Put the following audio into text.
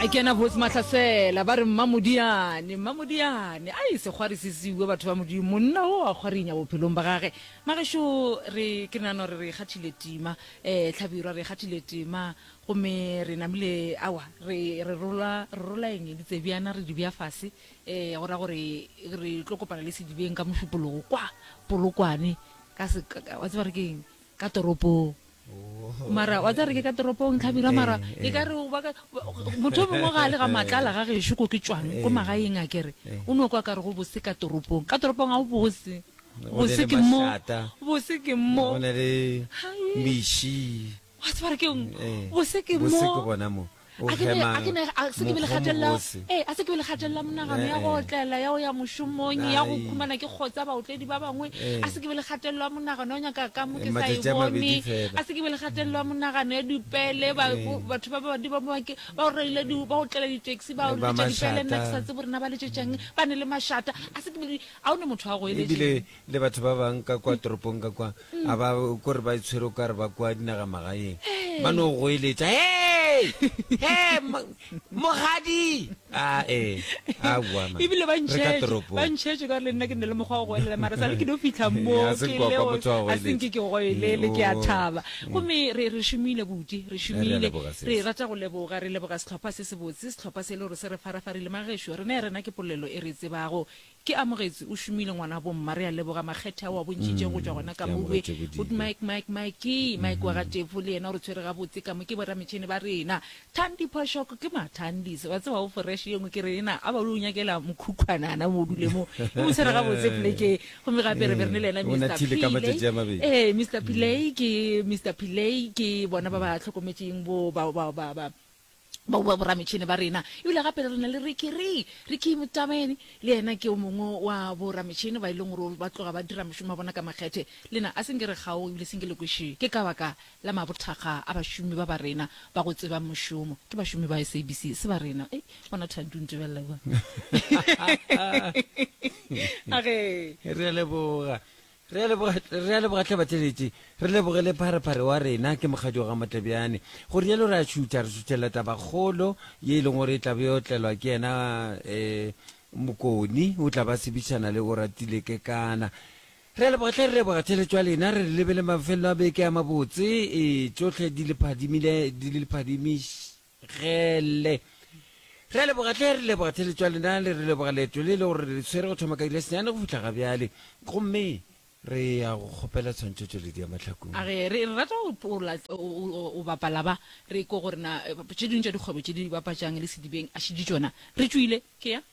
a kena botse mahlasela ba re mmamodiane mmamodiane a e sekgwari se seuwe batho ba modimo monna o a kgwarinya bophelong ba gage magešo re ke nano re re kgathile tima um tlhabirwa re kgathile tima gomme re namile awa re re rola re rola eng ditsebjana re di bja fase um go ra gore re tlo kopana le sedibeng ka mošupologo kwa polokwane ka se wa tseba re ke eng ka toropong mara wa tsa re ke ka toropong tlhabira mara eh, e ka eh. re motho mongwe ga a le ga matlala ga gešo ko ke tswang ko eh. magaeng a kere o ne o kwa ka re go bose ka toropong ka toropong ga o bose bose ke mo bose ke mo o ne le mishi wa tsebare ke bose ke mo a ke be a ke ne a se ke be le gatelela eh a se ke be le gatelela monagano ya go otlela ya o ya moshomong ya go khumana ke kgotsa ba otledi ba bangwe a se ke be le gatelela monagano ya nyaka ka mo ke sa e bone a se ke be le gatelela monagano ya dipele ba batho ba ba di ba ba ke ba o reile di ba otlela di taxi ba o le di pele nna ke sa tse borena ba le tšetšang ba ne le mashata a se ke be a o ne motho a go e le le batho ba bang ka kwa toropong ka kwa a ba kore ba itshwere o kare ba kwa dinagamagaeng ba no goeletša hey hey mo- mogadi a e a boa man. ebile ba Re ka ntšhetše toropong. ba ntšhetše ka gore le nna ke ne le mokgwa wa go goelela mara sa le ke no fitlha mo Eh, a se ke kwa- kwa leo- motho wa go a se nke ke goelele ke a Oh. thaba gomme re re šomile bodi re šomile leboga sis. re rata go leboga re leboga setlhopha se se botse setlhopha se e le gore se re farafarile magešo rena ya rena ke polelo e re e tsebago Ke amogetše o šomile ngwanabo mma, re a leboga makgethe ao a bontšitšego go tšwa gona ka mo. Ke amogetše Good bodile. Mike, Mike, Mike, Mike wa ga Tefo le yena o re tshwere gabotse ka mo, ke borametšhene ba rena. Thandi Phoshoko, ke ma Thandis, wa tseba o foreše ye nngwe ke re ena a ba o yo nyakela mokhukhwanana mo o dule mo, o mo tshwere gabotse Plekeng. Gomme gape re be re ne le yena Ee, o Mister nathile ka matšatši a Pillay, mabedi. ee Mister Pillay ke Mister Pillay ke bona ba ba hlokometšeng bo ba ba ba ba bao ba borametšhene ba rena. Ebile gape re na le Ricky Re, Ricky Mutabeni, le yena ke o mongwe wa borametšhene ba e leng gore ba tloga ba dira mošomo wa bona ka makgethe. Lena a se nke re kgaoge ebile se nke le kwe šii. Ke ka baka la mabothakga a bašomi ba ba rena ba go tsebang mošomo. Ke bašomi ba SABC, se ba rena. Ei, bona Thandi o ntebelela kua. A ge. Re a leboga. Re a leboga, re a leboga hle batleletši, re leboge le pharephare wa rena ke Mokgadi Ogamotlebjane. Go rialo re a tšhutha, re tšhuthela tabakgolo ye e leng gore e tla be yo tlelwa ke yena um Mokoni o tla ba sebitšana le Oratile Kekana. Re a leboga hle, re leboga theletšo ya lena, re re lebele mafelelo a beke a mabotse, e tšohle di le phadimile, di le phadimiš-. gele re a leboga tle re leboga theletšwa lena le re leboga leeto le le gore re le tshwere go thoma ka ile senyane go fitlha ga bjale gomme re ya go kgopela tshwantšho tšweledi ya mahlakong a ge re rata o bapala ba re ko gore na tše dingwe tša dikgwebo tše di bapatšang le sedibeng a šedi tšona re tšwile ke ya